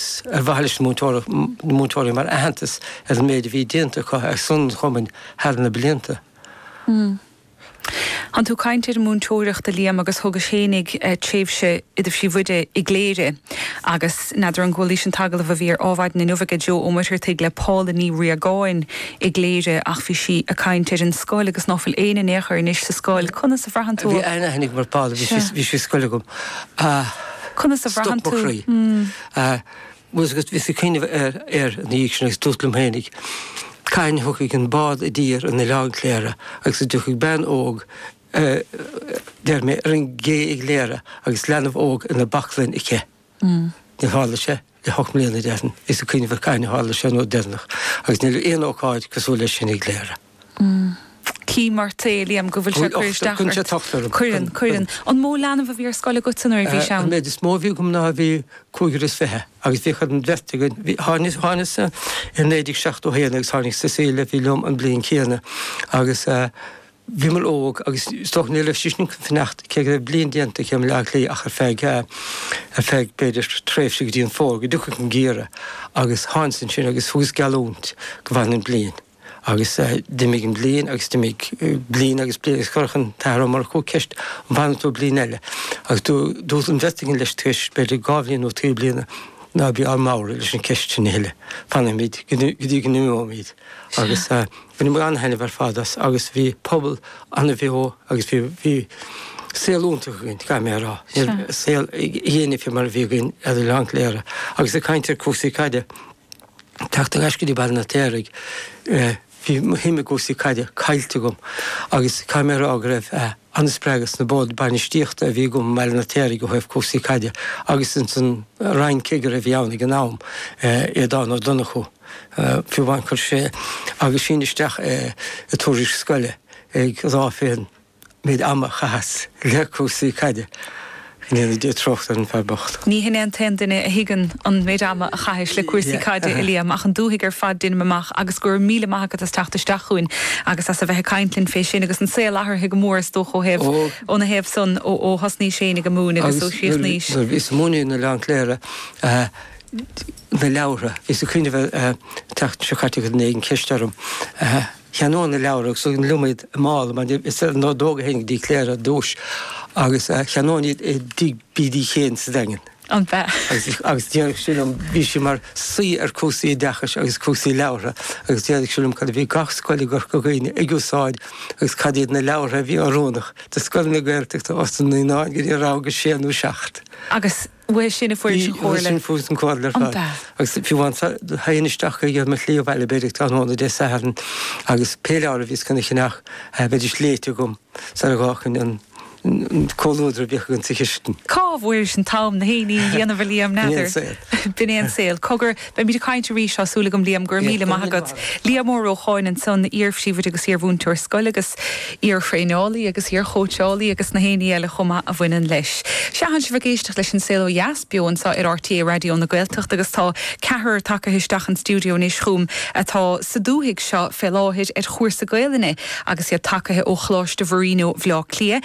's ar mhaithe leis na múinteoirí mar aitheantas ar an méid a bhí déanta acu ar son an chumainn thar na blianta. Tánn tú ag caint ar an múinteoireacht a Liam agus thugais féinig tréimhse i do phríomhoide i gCléire agus n'fheadar an gcualaís an t-agallamh a bhí ar Adhmhaidin inniu aige Joe Ó Muircheartaigh le Paula Ní Riagáin i gCléire ach bhí sí ag caint ar an scoil agus ná fuil éinne in aon chor anois sa scoil. Conas a bhraitheann tú? Bhí an-aithne agam ar Paula, bhí sí ar scoil agam. Conas a bhraitheann tú? Stop mo chroí. Muise agus bhíos ag cuimhneamh air ina dhiaidh san agus dúrt liom féinig cathain a thiocfaidh an bád i dtír in Oileán Cléire agus go dtiocfaidh bean óg deir mé ar an gcé i gCléire agus leanbh óg ina baclainn aici. Níor tharla sé. le hocht mbliana déarfainn, is ag cuimhneamh ar cathain a tharla sé an uair dheireanach, agus níl aon ócáid cosúil leis sin i gCléire. Chím ort, a Liam, go bhfuil sé ag cur isteach ort. Cuireann sé tocht orm. Cuireann, cuireann. An mó leanbh a bhí ar scoil agatsa nuair a bhís ann? An méid is mó a bhí agam ná bhí cúigear is fiche agus bhíodh an bheirt againn, tháinig, thánas-sa i 1971 agus tháinig Cecilia a bhí liom an bhliain céanna agus, bhíomar óg agus is dócha ní raibh sí sin chun fanacht cé go raibh bliain déanta aici i mBleá Cliath ach ar feadh, ar feadh b'fhéidir tréimhse go dtí an Fómhar go dtiocfadh an geimhreadh agus thánas ansin agus thugas geallúint go bhfanfainn an bliain agus d'imigh an bhliain agus d'imigh bliain agus bliain agus chuirfeadh an tAthair Ó Murchú ceist an bhfanfaidh tú bliain eile agus dúirt an bheirt againn leis tar éis b'fhéidir dhá bhliain nó trí bliana ná bí ár mbodhradh leis an gceist sin a thuilleadh, fanfaimid go dtí go n-imeoimid agus. Bhain muid an-thaitneamh ar fad as agus bhí pobal an-bheo agus bhí, bhí saol iontach againn, caithfidh mé a rá. Sure. Saol fhéinne mar a bhí againn ar Oileán Chléire. Agus ag caint ar cúrsaí caide, teacht ar ais go dtí Baile an Fheirtéaraigh, bhí mo shuim i gcúrsaí caide caillte agam agus caithfidh mé a rá go raibh an-spreagadh sna boird bainistíochta a bhí agam i mBaile an Fheirtéaraigh ó thaobh cúrsaí caide agus ins an roinnchigire a bhí ann ag an am, Aodán Ó Donnchú. fiú amháin chuir sé aguisín isteach i dtuairisc scoile ag rá fén méid ama a chaitheas le cúrsaí caide go ndéana Dia trócaire ar an bhfear bocht. Ní hin é an t-aon duine a thuigeann an méid ama a chaithis le cúrsaí caide, a Liam, ach an dúthaigh ar fad déanaim amach agus go raibh míle maith agat as teacht isteach chugainn agus as a bheith ag caint linn fé sin agus an saol athraithe go mór is dócha ó thaobh óna thaobh san ó thosnaís féinig ag múineadh agus ó chríochnaís. Agus nuair a bhíos ag múineadh in Oileán Cléire na leabhartha. Bhíos ag cuimhneamh air an tseachtain seo caite chuir duine éigin ceist orm. Cheannóinn na leabhartha agus thug liom iad i mála mar is ar an ordóg a théinn go dtí Cléire ar dtúis agus cheannóinn iad i dtigh Bidí Chéin sa Daingean. An b'ea? Agus déarfadh sí liom, bhí sí mar saoi ar cúrsaí oideachais agus cúrsaí leabhartha, agus déarfadh sí liom cad a bhí gach scoil i gCorca Dhuibhne ag úsáid agus cad iad na leabhartha a bhí oiriúnach do scoileanna Gaeltachta ós na naíonáin go dtí rang a sé nó seacht. Agus Uaidh sin a fuaireas an chomhairle. Uaidh sin a fuaireas an chomhairle ar fad. An bealach. Agus fiú amháin theigheann isteach ar mo shlí abhaile b'fhéidir ag tráthnóna Dé Satharn agus pé leabhar a bhíos cun a cheannach bheidís léighte agam sar a dh'fhágfainn an comhluadar a bhíodh againn sa chistin. Cá bhfuairis an t-am na héinní a dhéanamh a Liam, n'fheadar. B'in é an saol. B'in é an saol. Cogar. Beimid ag caint arís, tá súil agam, Liam, go raibh míle maith agat. Liam Mór Ó Cáin ansan, iar-phríomhoide agus iar-mhúinteoir scoile agus iar-thraeneálaí agus iar-chóitseálaí agus na héinní eile chomh maith a bhaineann leis. Sea tánn sibh ag éisteacht leis an Saol Ó Dheas beo anso ar RTÉ Raidió na Gaeltachta agus tá ceathrar tagtha isteach sa stiúideo anois chugam atá sa dúthaigh seo fé láthair ar chúrsa Gaelainne agus iad tagtha ó Choláiste Mharino Bhleá Cliath.